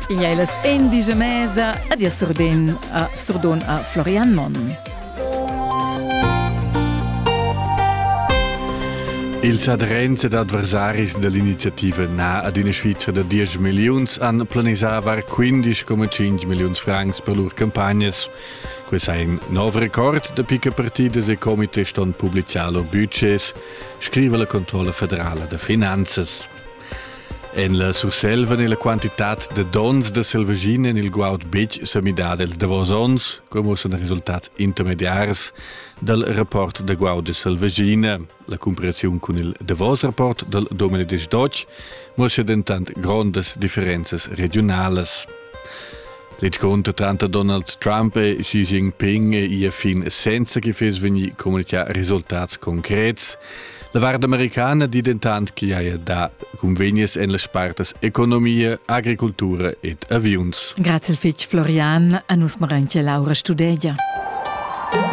Ia e las endige mesa ad ia surdon a, surdon a Florian Monn. Ils adrens ed adversaris dell'iniziativa Na ad ina Svizra da 10 milliuns han planisava 15,5 milliuns francs per lur campagnas. Quest è in nov record da picca partidas e comitè ston publiciar lur budgets, scrive la Controlla federala da finanzas. En la Surselva è la quantitad da dons da selvaschina en il guaud betg sa midada ils davos onns, come san resultats intermediars dal rapport da guaud de selvaschina. La comparaziun cun il davos rapport dal 2018 mostra dentant grondas differenzas regionalas. Led conto tanto Donald Trump e Xi Jinping e ia fin senza che fes vegni comunicà risultats concrets. La varda americana di dentant che haja da convenies en las partas economia, agricultura ed aviuns. Grazie fitg Florian, a nus maranche Laura Studegia.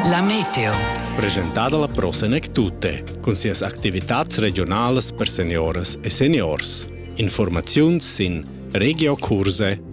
La Meteo. Presentada la Prosenec Tutte, con sias activitats regionales per seniores e seniors. Informaziun sin regiocurse.it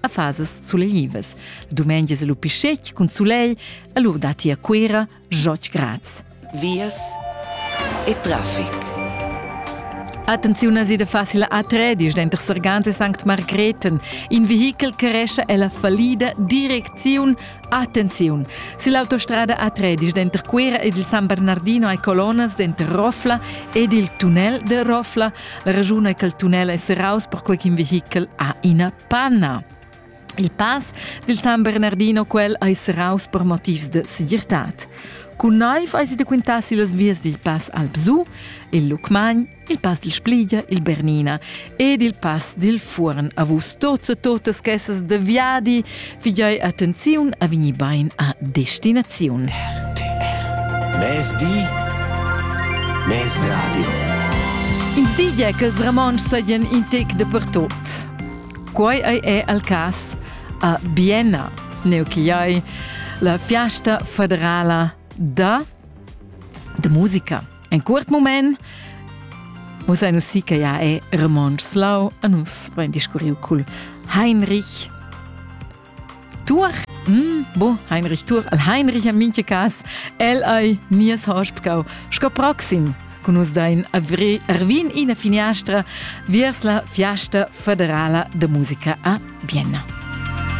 a fasas sulevas. La dumengia è lu pischec cun sulegl, e lu datti a Cuira joc grads. Vias e traffic. Attenziun a da facile a tredisch denter Sergans e St. Margreten. In vehichel cresce è la fallida direcziun Attenziun! Si l'autostrada A13 denter Cuira ed il San Bernardino hai colonas denter Rofla ed il tunnel de Rofla. La ragiun è che il tunnel è serraus perquei ch'in vehichel ha ina Panna. Il pass dil San Bernardino quel ei serraus per motivs de segirtad. Cun neiv eis da quintar si las vias dil pass Albsu, il Lucmagn, il pass dil Spligia, il Bernina ed il pass dil Fuorn avus tots e totas casas de viadi Figei attenziun a vegni bein a destinaziun. RTR. Mezdi, mez radio. Ins di gia ch'ils Ramontschs sajan in tec dapertut. Quai ei è al cas a Bienna, neuchiai, la fiasta federala da, da musica. En curt moment musa nus si che ja è Ramonsch Slau a nus vain discurriu cul Heinrich Tur mm, bo Heinrich Tur al Heinrich am minche cas el ei nies Hospkau sco proxim con us dain avri Arvin ina finiastra viers la fiasta federala de musica a Vienna.